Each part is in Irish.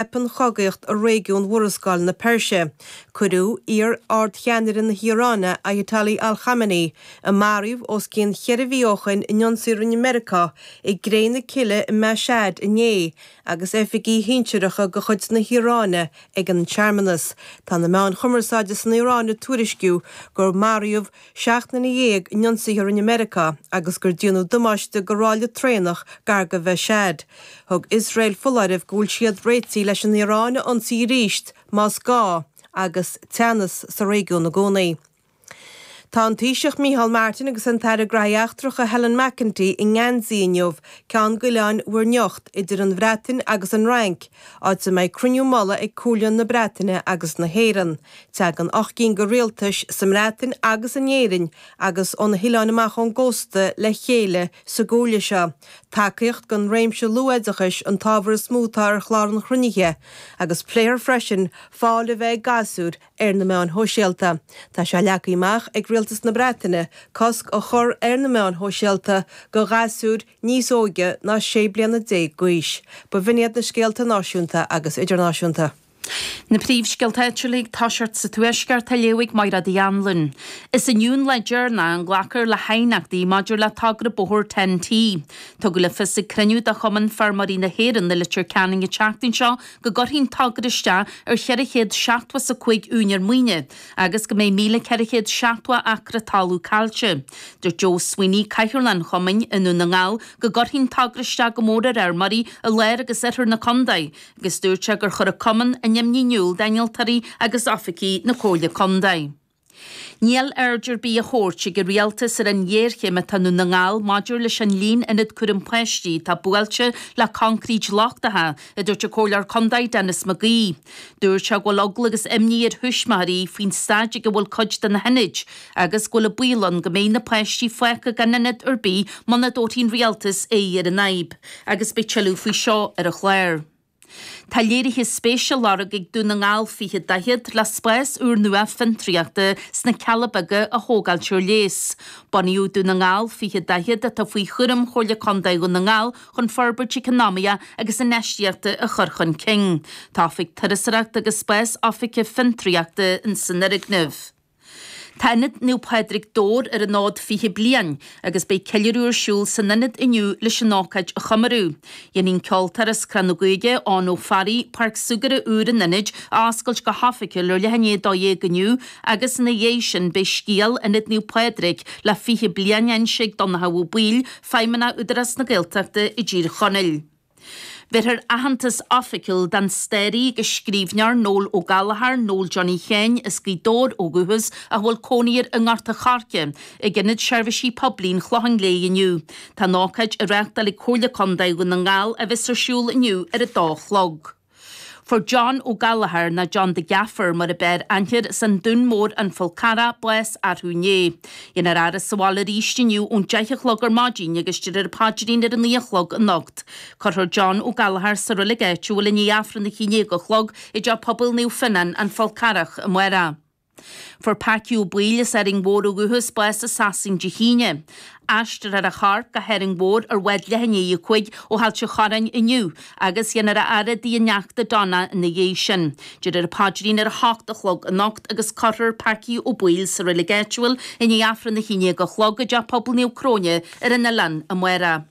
Theip an chogaíocht i réigiún Mhurascaill na Peirse. Cuireadh iar-ardcheannaire na hIaráine, Ayatollah Al Khamenei, a maraíodh os cionn cheithre mhí ó shin, in ionsaí a rinne Meiriceá i gcré na cille i Mashhad inné agus oifigigh shinsearacha de chuid na hIaráine ag an searmanas. Tá na meáin chumarsáide san Iaráin ag tuairisciú gur maraíodh. Seacht nduine dhéag in ionsaithe a rinne Meiriceá agus gur déanadh damáiste do ráille traenach gar do Mhashhad. Thug Iosrael foláireamh go bhfuil siad réitithe leis an Iaráin a ionsaí arís más gá agus teannas sa réigiún i gcónaí. Tá an Taoiseach Micheál Martin agus an tAire Gnóthaí Eachtracha Helen McEntee i nGeansaí inniu ceann d'oileáin Mhuir nIocht, idir an Bhreatain agus an Fhrainc, áit a mbeidh cruinniú mullaigh ag Comhairle na Breataine agus na hÉireann. Tagann ocht gcinn de rialtais, sa mBreatain agus in Éirinn agus ó na hoileáin amach ón gcósta, le chéile sa gComhairle seo. Tacaíocht don réimse luathoideachais an t-ábhar is mó atá ar chlár an chruinnithe, agus pléifear freisin fáil a bheith ag gasúir ar na meáin shóisialta. Tá sé leagtha amach ag Rialtas na Breataine cosc a chur ar na meáin shóisialta do ghasúir, níos óige ná 16 bliana d'aois. B'in iad na scéalta náisiúnta agus idirnáisiúnta. Na príomhscéalta áitiúla ag tosacht sa Tuaisceart á léamh ag Mairéad Uí Annluain. Is inniu an lá deireanach a nglacfar le haighneachtaí maidir le togra bóthair Ten-T. Tugadh le fios ag cruinniú de Chumann Feirmeoirí na hÉireann i Leitir Ceanainn an tseachtain seo go gcuirfidh an togra isteach ar cheithre chéad seachtó is a cúig úinéir maoine agus go mbeidh 1,470 acra talún caillte. Dúirt Joe Sweeney, Cathaoirleach an chumainn i nDún na nGall, go gcuirfidh an togra isteach go mór ar fheirmeoirí i lár agus oirthear na contae agus dúirt sé gur chuir an cumann a n-imní in iúl d'innealtóirí agus oifigigh na Comhairle Contae. Níl aird ar bith á thabhairt ag an rialtas ar an ghéarchéim atá i nDún na nGall maidir leis an líon ionad cúraim páistí atá buailte le coincréit lochtacha, a dúirt an Comhairleoir Contae Denis McGee. Dúirt sé go bhfuil eagla agus imní ar thuismitheoirí faoin staid ag a bhfuil cuid de na hionaid agus go bhfuil an baol ann go mbeidh na páistí fágtha gan ionad ar bith muna dtabharfaidh an Rialtas aghaidh ar an fhadhb agus beidh tuilleadh faoi seo ar an chlár. Tá léirithe spéise á lorg ag Dún na nGall 20 40 le spás úrnua fiontraíochta sna Cealla Beaga a thógáilt ar léas. Bunaíodh Dún na nGall 20 40, atá faoi chúram Chomhairle Contae Dhún na nGall, chun forbairt eacnamaíochta agus infheistíochta a chur chun cinn. Tá oifig turasóireachta agus spás oifige fiontraíochta san fhoirgneamh. Tá Ionad Naomh Pádraig Dobhair ar an fhód 20 bliain agus beidh ceiliúradh ar siúl san Ionad inniu leis an ócáid a chomóradh. Déanfaidh an ceoltóir as Cró na gCuigeadh, Eoin Ó Fearraigh, Páirc Súgartha úr an Ionaid a oscailt go hoifigiúil ar leath i ndiaidh 12 inniu agus ina dhiaidh sin beidh scéal Ionad Naomh Pádraig le 20 bliain á inse ag Donnchadh Ó Baoill, Feidhmeanna Údarás na Gaeltachta i dTír Chonaill. Bhéarfar aitheantas oifigiúil don staraí agus scríbhneoir Noel Ó Gallchóir, Noel Johnny Sheáin as Gaoth Dobhair ó dhúchas ach a bhfuil cónaí air i nGort a' Choirce, ag Ionad Seirbhísí Poiblí an Chlocháin Léith inniu. Tá an ócáid á reáchtáil ag Comhairle Contae Dhún na nGall a bheas ar siúl inniu ar a dó a chlog. Fuair John Ó Gallchóir nó John the Gaffer mar ab fhearr aithne air as an Dún Mór An Fál Carrach bás arú inné. Dhéanfar a fhaire sa bhaile arís inniu ón deich a chlog ar maidin agus déarfar an paidrín ar a naoi a chlog anocht. Cuirfear John Ó Gallchóir sa reilig áitiúil i ndiaidh Aifreann a haon déag a chlog i dteach pobail Naomh Fionnán, An Fál Carrach, amárach. Fuair Packy Ó Baoill as Árainn Mhór ó dhúchas bás i Sasain Dé hAoine. Aistreofar a chorp go hÁrainn Mhór ar bhád leath i ndiaidh a cúig ó Ailt an Chorráin inniu agus dhéanfar a fhaire i dtigh a neachta Donna ina dhiaidh sin. Déarfar an paidrín ar a hocht a chlog anocht agus cuirfear Packy Ó Baoill sa reilig áitiúil i ndiaidh Aifreann a haon déag a chlog i dTeach Pobail Naomh Cróine ar an oileán amárach.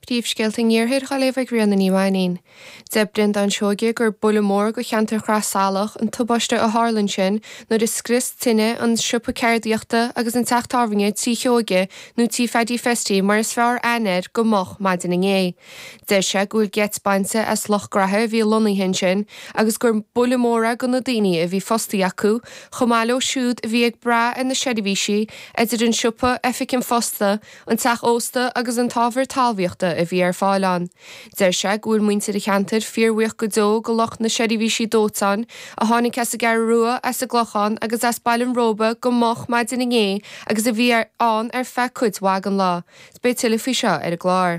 Príomhscéalta an iarthair dhá léamh ag Ríona Ní Mhainín. Deir Breandán Seoige gur buille mór do cheantar Shraith Salach an tubaiste a tharla ansin nuair a scrios tine an siopa ceardaíochta agus an teach tábhairne Tí Sheoige nó Tí Pheaidí Festy mar is fearr aithne air go moch maidin inné. Deir sé go bhfuil geit bainte as lucht graithe a bhí lonnaithe ansin agus gur buille mór é do na daoine a bhí fostaithe acu chomh maith leo siúd a bhí ag brath ar na seirbhísí idir an siopa, oifig an phosta, an teach ósta agus an t-ábhar talmhaíochta a bhí ar fáil ann. Deir sé go bhfuil muintir an cheantair fíorbhuíoch go deo do lucht na seirbhísí dóiteáin a tháinig as an gCeathrú Rua, as an gClochán agus as Baile an Róba go moch maidin inné agus a bhí ann ar feadh cuid mhaith den lá. Beidh tuilleadh faoi seo ar an gclár.